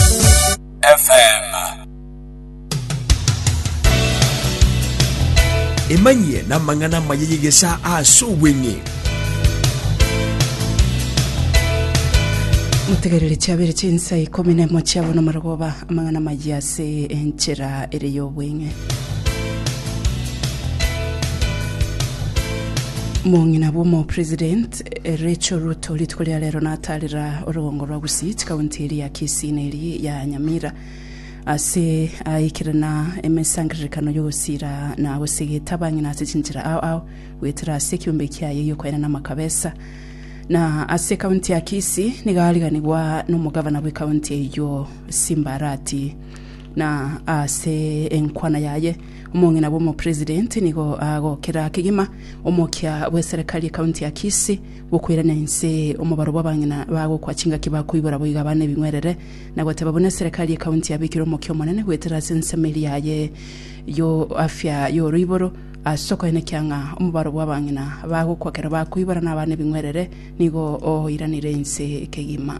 FM. emanyie namang'ana amaya y'egesaa ase obweng'e mutegerere chiabere chinsa ikomi na emo chiabo nomarogoba amang'ana mayi ase enchera ere y'obweng'e mong'ina bw'omo president Ericho ruto rituko ria rero natarera orogongo rwa Gusii chikaunti eria ya Kisii na eri ya Nyamira ase aikire na emesangererekano yogosira na gosegeta abang'ina ase chinchera ao ao goetera ase ekiombe kiaye giokoenana amakabesa na ase ekaunti ya Kisii niga ariganigwa nomogavana bw'ekaunti eyio Simbarati na ase enkwana yaye omong'ina bw'omopresident nigo agokera kegima omokia bw'eserekari ekaunti ya Kisii gokoirania inse omobaro bw'abang'ina bagokwa chingaki bakoibora boiga abana ebing'werere na goteba buna eserekari ekaunti yabekire omokia omonene goetera ase ensemeri yaye yo afya y'oroiboro ase okoenekia ng'a omobaro bw'abang'ina bagokwa kero bakoibora na abana ebing'werere nigo oiranire inse kegima.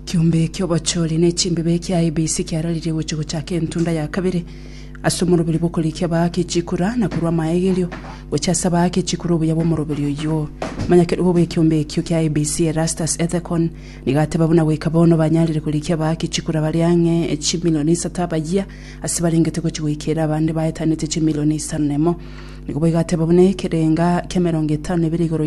Ekiombe ki'obochori ne chimbibe kia ABC kiararirie gochia gochaka entunda ya kabere ase omoroberi bw'okorikia baake chikura na korua amaegerio gochia ase abaake chikura obuya bw'omoroberi oyio. Omonyakerogo bw'ekiombe ekio kia ABC Erastus Ethekon nigo ateba buna goika bono banyarire korikia abaake chikura bare ang'e chimilioni isato abayia ase barengete gochia goika ere abande baetanete chimilioni isano na emo. Nigo boigo ateba buna ekerenga ki'emerongo etano na ebere igoro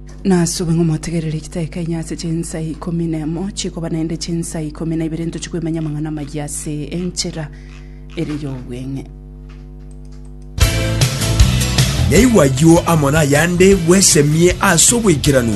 Nasube ng'a omotegererie chiteka inye ase chinsa ikomi nemo chikoba naende chinsa ikomi na ibere ntochie koimanya amang'ana amayia ase enchera ere y'obweng'e. Naigwe ayio amo nayande bwesemie ase oboikeranu.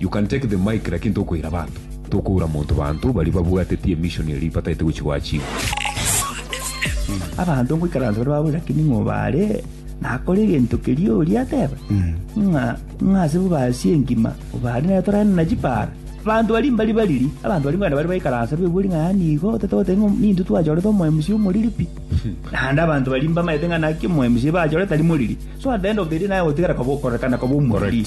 You can take the mic lakini tokoira abanto. Tokoura monto banto baria babwateti emission eria bataete gochi gwachinguru. Abanto ngoikaransa bare baboire lakini ng'o bare nakore egento keria oria ateba ng'a ng'a ase bobasi engima obare nere torane na chipara abanto baria mbari bariri abanto baria mbare bare baikaransa bebori ng'a yaani igo otete goteba ng'a ninto twachorete omoMC omoriri pi naende abanto baria mbamaete ng'a naki omoMC bachorete tari moriri so at the end of the day naye ogotigara koba okorekana koba omoriri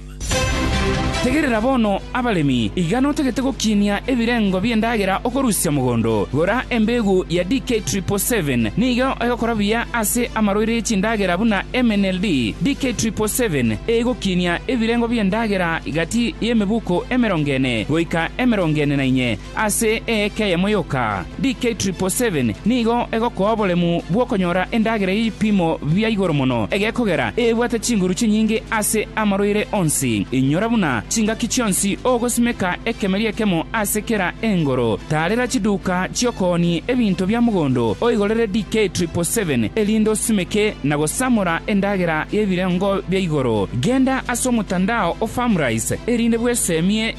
Tegerera bono, abaremi, iga notagete gokinia ebirengo bi'endagera okorusia mogondo, gora embegu ya DK Triple Seven, nigo egokora buya ase amaroiro ye chindagera buna MNLD. DK Triple Seven egokinia ebirengo bi'endagera gati y'emebuko emerongo ene goika emerongo ene na inye, Ase eeka eyemo yoka, DK777 nigo egokoa oboremu bw'okonyora endagera y'ebipimo bia igoro mono egekogera ebwate chinguru chinyinge ase amarwaire onsi. Inyora buna chingaki chionsi ogosimeka ekemeri ekemo ase kera engoro. Taarera chiduka chi'okoonia ebinto bia mogondo oigorere DK777 erinde osimeke na gosamora endagera y'ebirengo bia igoro. Genda ase omotandao o Farmrise erinde bweseemie